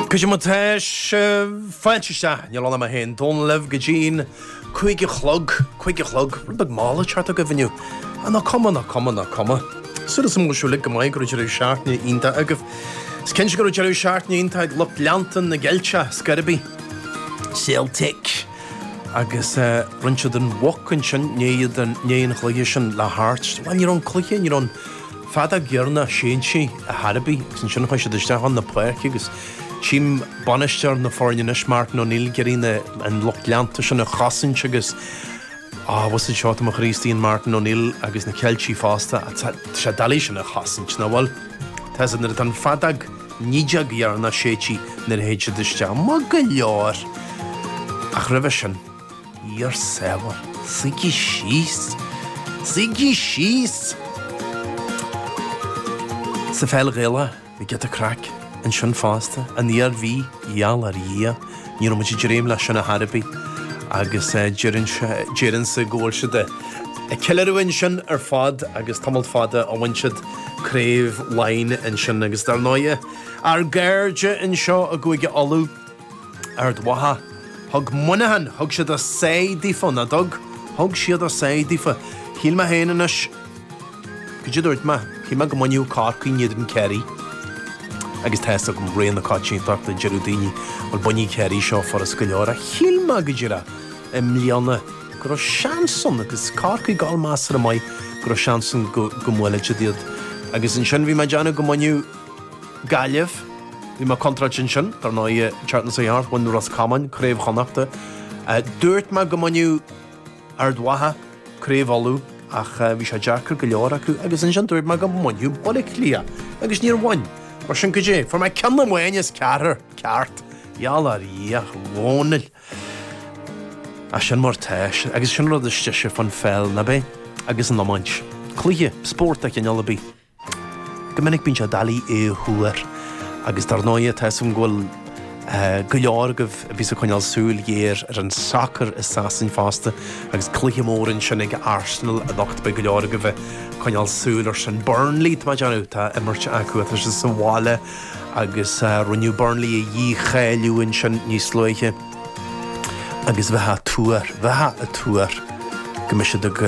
Cad é mar tá sibh, fáilte isteach, níl ann ach mé féin, Dónal, libh go dtí'n cúig a chlog, cúig a chlog, rud beag mall ag teacht agaibh inniu, ach ná cuma, ná cuma, ná cuma. Súil agam go bhfuil sibh uilig go maith, go raibh deireadh seachtaine iontach agaibh. Is cinnte go raibh deireadh seachtaine iontach ag lucht leanta na gCeilteach, Scoirfigh, Celtic agus roinnt den bhoc ansin i ndiaidh an chluiche sin le Hearts. Bhuel, ní raibh an cluiche, ní raibh an. fheadóg dheireanach séidte a chor ar bith agus ansin chuaigh siad isteach chun na páirce agus tchím bainisteoir na foirne anois Martin O'Neill ag iarraidh na an lucht leanta sin a chosaint agus an bhfuil 'fhios agat seo tá mo chroí istigh in Martin O'Neill agus na Ceiltigh fosta ach tá sé doiligh sin a chosaint ná bhfuil Tá 'fhios agat nuair atá an fheadóg an fheadóg dheireanach séidte nuair a théid siad isteach maith go leor ach roimhe sin Ár sábháil, suígí síos! Suígí síos! Sa Pheil Ghaelach, bhí giota craic ansin fosta, an Iarmhí, gheall ar Dhia, ní raibh muid ag dréim leis sin a chor ar bith, agus deireann sé, deireann siad go bhfuil siad ag ceiliúradh ansin ar fad agus tamall fada ó bhain siad Craobh Laighin ansin, agus dar ndóighe, ár gcairde anseo i gCúige Uladh, Ard Mhacha. Thug Muineachán, thug siad a sáith daofa, ná dtug? Thug siad a sáith daofa. Shíl mé féin anois, cad é a dúirt mé? Shíl mé go mbainfeadh Corcaigh, in éadan Kerry. Agus tá fhios agam réir na coitiantachta, a deireadh daoine, bhuel bainfidh Kerry seo furast go leor, ach shíl mé go díreach i mbliana go raibh seans ann, agus Corcaigh ag gabháil measartha maith, go raibh seans ann go mbuailfeadh siad iad. Agus ansin bhí mé ag déanamh go mbainfeadh. Gaillimh. Bhí mé contráilte ansin, dar ndóigh. An tseachtain seo a chuaigh thart, bhain Ros Comáin craobh Chonnachta. Dúirt mé go mbainfeadh Ard Mhacha craobh Uladh ach bhí sé deacair go leor acu agus ansin dúirt mé go mbainfeadh Baile Átha Cliath agus níor bhain. Mar sin goidé? Fuair mé ceann amháin as ceathrar ceart, gheall ar Dhia, a Dhónaill. Ach sin mar tá sé agus sin an rud is deise faoin pheil, ná b'é? Agus an iomáint. Cluiche, spórt de chineál ar bith. Go minic bíonn sé doiligh é a thuar agus dar ndóigh tá 'fhios agam go bhfuil go leor agaibh a bhíos ag coinneáil súil ghéar ar an sacar i Sasain fosta agus cluiche mór ansin ag Arsenal anocht. Beidh go leor agaibh ag coinneáil súil ar sin. Burnley, tá mé ag déanamh, tá imirt acu atá siad sa bhaile agus rinneadh Burnley a dhícháiliú ansin níos luaithe. agus bheifeá ag tuar, bheifeá ag tuar go mbeidh siad ag,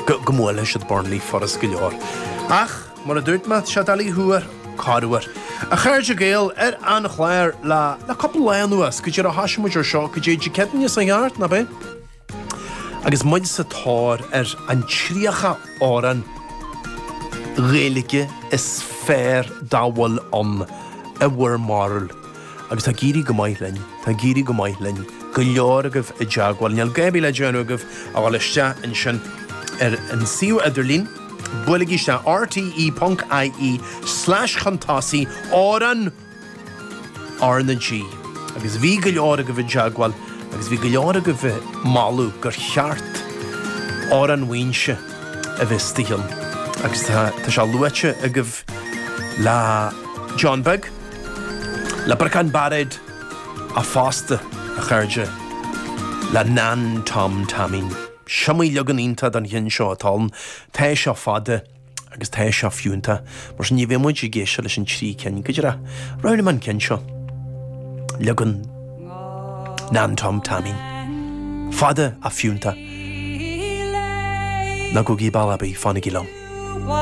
go, go mbuailfidh siad Burnley, furast go leor. Ach, mar a dúirt mé, tá sé doiligh a thuar, corruair. A chairde Gael, ar an chlár le, le cúpla lá anuas, goidé an uair a thosaigh muid ar seo, goidé, Dé Céadaoin seo a chuaigh thart, ná b'é? Agus muid sa tóir ar an 30 amhrán Gaeilge is fearr dá bhfuil ann i bhur mbarúil, agus tá ag éirí go maith linn, tá ag éirí go maith linn, go leor agaibh i dteagmháil, níl gá ar bith le déanamh agaibh ach dul isteach ansin ar an suíomh idirlín, buailigí isteach, rte. ie slash chun tosaigh, amhrán! RnaG, agus bhí go leor agaibh i dteagmháil agus bhí go leor agaibh ag moladh gur cheart Amhrán Mhuínse a bheith istigh ann agus tá tá sé luaite agaibh le John Beag, le Briocán Bairéad fosta, a chairde, le Nan Tom Taimín. Is iomaí leagan iontach den cheann seo atá ann, tá seo fada. Agus tá seo fiúntach, mar sin ní bheidh muid ag éisteacht leis an trí cinn go díreach. Roghnaím an ceann seo. Leagan Nan Tom Taimín. Fada fiúntach. Ná gabhaigí ball ar bith, fanaigí liom.